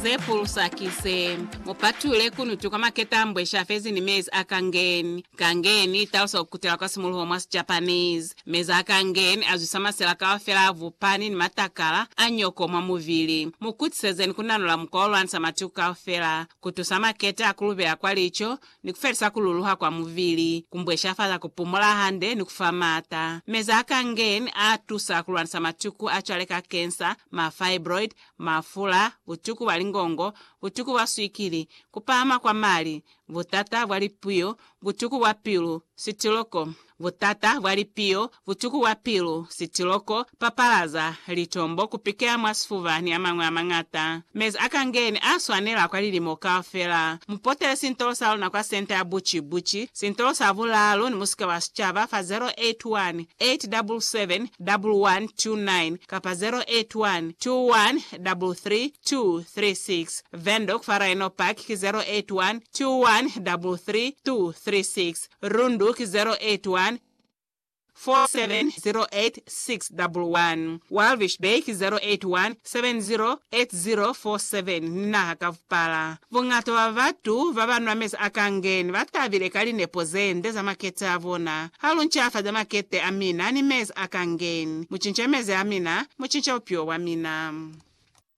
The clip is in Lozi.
Ze pulusa ki ze, Mu patulule kunutu kwa maketa a mbwe sha fezi ni mezi a kangeni. Kangeni i talusa ku kutela kwa simuluho mwa Sijapanese. Mezi a kangeni a zwisa masela kaufela a vupani ni matakala a nyoko mwa mubili. Mu kutisezeni ku nanula mukwa wo lwanisa matuku kaufela, ku tusa maketa a ku lubela kwa lico, ni ku felisa ku luluha kwa mubili, ku mbweshafala ku pumola hande, ni ku fa maata. Meza a Kangen a tusa ku lwanisa matuku a cwale ka kensa, ma fibroid, mafula, butuku bwa lingongo, butuku bwa swikili, ku pahama kwa mali, butata bwa lipuyo, butuku bwa pilu, sitiloko, Butata bwa lipiyo, butuku bwa pilu, sitiloko, papalaza, litombo, ku pikela mwa sifuba ni a mañwi a mañata. Mezi a kangeni a swanela kwa lilimo kaufela. Mu potele sintolo sa luna kwa Senta ya Buci Buci, sintolo sa bulaalu ni musika wa sicaba fa 0818771129 kapa 0812133236. Windhoek fa Rhino Park ki 0812133236. Rundu ki 081 4708611, Walvis Bay ki 081 708047, ni naha ka bupala. Buñata bwa batu baba nwa mezi a kangeni ba tabile ka linepo ze nde za makete a bona. Ha lu ncafaza makete a mina ni mezi a kangeni, mu cinca mezi a mina, mu cinca bupilo bwa mina.